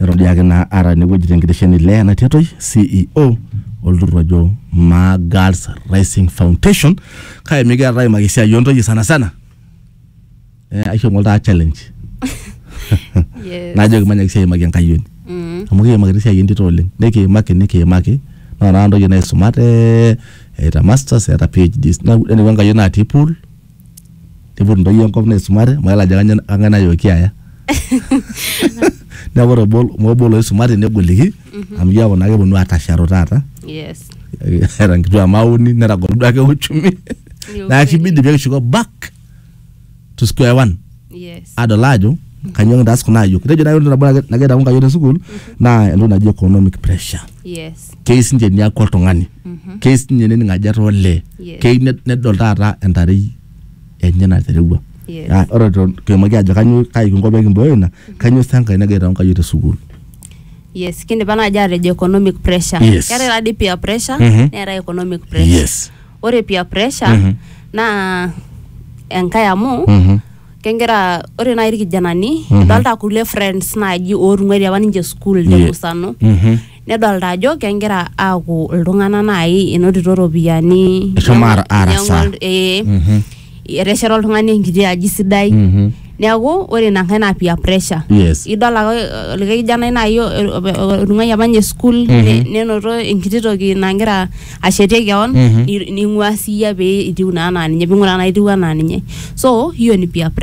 Neton diake naa aata enewueji tenkitesheni le Ena Tiatoi CEO olturrur ojo Maa Girls Rising Foundation kake mikiata aimaki esiai oontoyie sana sana eh, aisho ng'ole taa challenge Yes. najoki manyaki sii aimaki enkayioni Mm. amu kiimaki te siai entito oleng nikiimaki nikiimaki naa naa ntoyie naisumate eeta masters eeta PhDs neeku eneiko enkayioni natii pool niput ntoyie enkop naisumate amu mayiolo ajo kanyoo kang'ae nayooki aya neeku ore obo mobo loisumate negoliki amu keeku naa keponu atasharu taata Yes. eeta nkituak mauni netagolo duake uchumi Ni neeku ukweli. kibidi pekishuko back to square one. Yes. adol ajo kanyoo kintaas kuna ayiok itejo naaji ore nabo nage- nagira aitau nkayiok te sukuul naa entoki naji economic pressure Yes. keyieu sinche niaku oltung'ani keyieu sinye nening ajo etaa olee Yes. keyieu ned- nedol taata entarei enye naterewua Yes. Ah, ore to- kiimaki ajo kanyoo kai kinko pee kimbooyo ina kanyoo sa enkae nagira aitau nkayiok te sukuul Yes. Kindipa naaji atejo economic pressure. Yes. Keetae taadii peer pressure Mhm. neetae economic pressure. yes ore peer pressure Mhm. naa enkae amu Mhm. kegira ore naaji irkijanani Mhm. idolta kulie friends naaji ootung'uaitie apa ninche school Ye- temusano Mhm. nedolta ajo kegira aaku iltung'anak naaji enotito iropiyiani Eshomo ara- arasaa. Inyang'ua- ee Mhm. etesheta oltung'ani enkiti aji sidai Mhm. neeku ore ina nkae naa peer pressure Yes. idol ake eh, likae kijanai naaji o- o- o- otung'uayie apa ninye school ne- nenoto enkiti toki nagira ashetie keon Mhm. ni- ning'ua siiyie pee itiu naa anaa ninye ping'uraa naa itiu anaa ninye so hiyo ni peer pressure